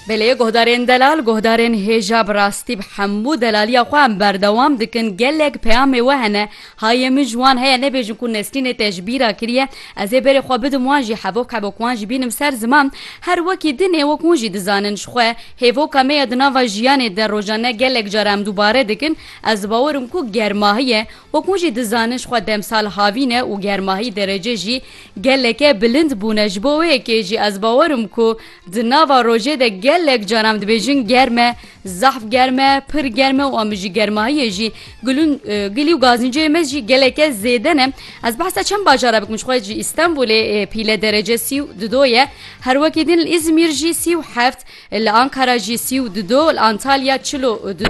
Belê guhdarên delal guhdarên hêja bi rastî bi hemû delaliya xwe em berdewam dikin gelek peyamê we hene hayê min ji wan heye nebêjin ku Nesrînê te ji bîra kiriye ez ê berê xwe bidim wan jî hevok hevok wan jî bînim ser ziman her wekî din ê wek hûn jî dizanin ji xwe hêvoka me ye di nava jiyanê de rojane gelek car em dubare dikin ez dibawer im ku germahî ye wek hûn jî dizanin ji xwe demsal havîn e û germahî derece jî Geleke bilind bûne ji bo wê yekê jî ez bawer im ku di nava rojê de gelek car em dibêjin germ e, zehf germ e, pir germ e û em ji germahiyê jî gulûn gilî û gazînceyê me jî geleke zêde ne. Ez behsa çend bajar e bikim ji xwe ji Îstenbûlê pîle derece sî û di do ye. Her wekî din li Îzmîr jî sî û heft, li Ankara jî sî û di do, li Antalya çil û du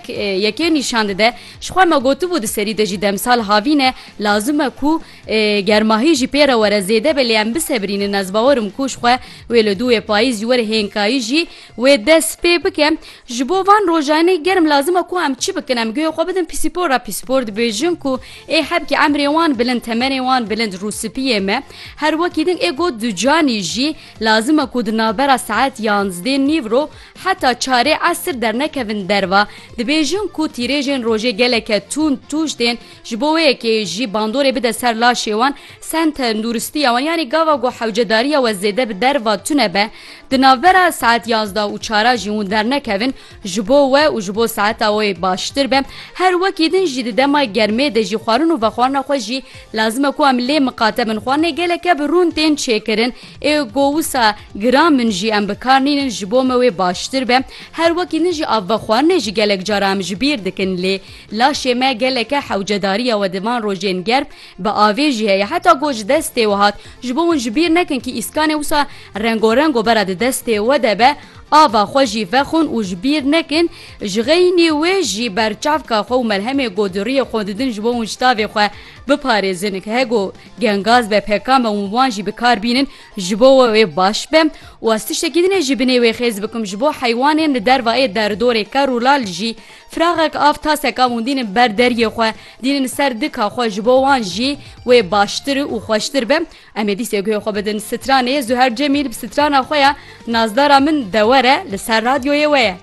yekê nîşan dide. Ji xwe me gotibû di serî de jî demsal havîn e lazim e ku Ger mahî jî pê re were zêde be lê em bisebrînin ez bawerim ku ji xwe wê li dûyê payîz ji werî hênkayî jî wê dest pê bike. Ji bo van rojanê germ lazim e ku em çi bikin? Em guhê xwe bidin pîsîpor re. Pîsîpor dibêjin ku ê hebkî emrê wan bilind temenê wan bilind rûspiyê me. Her wekî din ê got ducanî jî lazim e ku di navbera saet yanzdê nîv ro heta çarê esir dernekevin derva. Dibêjin ku tîrêjên rojê geleke tund tûj tên. Ji bo wê yekê jî bandorê bide ser laşê wan, sen tenduristiya wan yanî gava ku hewcedariya we zêde bi derva tune be, di navbera saet yazda û çara jî hûn dernekevin ji bo we û ji bo saeta wê baştir be. Her wekî din jî di dema germê de jî xwarin û vexwarina xwe jî lazim e ku em lê miqate bin. Xwarinê geleke bi rûn tên çêkirin ê ku wisa giran bin jî em bi kar nînin ji bo me wê baştir be. Her wekî din jî av vexwarinê jî gelek cara em ji bîr dikin lê, Laşê me geleke hewcedarîya we di van rojên germ bi avê jî heye. Heta ku ji destê we hat, ji bo hûn ji bîr nekin kî îskanê wisa rengorengo bera di destê we de be, ava xwe jî vexwin û ji bîr nekin ji xeynî wê jî berçavka xwe û melhemê goduriyê xwe didin ji bo hûn ji tavê xwe biparêzin. He ku gengaz be peka me hûn wan jî bi kar bînin ji bo we wê baş be û ez tiştekî din ê ji binê wê xêz bikim ji bo heywanên li derva ê derdorê ker û lal jî Firaxek av taseka hûn dînin ber deryê xwe, dînin ser dika xwe ji bo wan jî wê baştir û xweştir be. Em ê dîsê guhê xwe bidin stranê Zuher Cemîl bi strana xwe ya Nazdara min dewere li ser radyoyê we ye.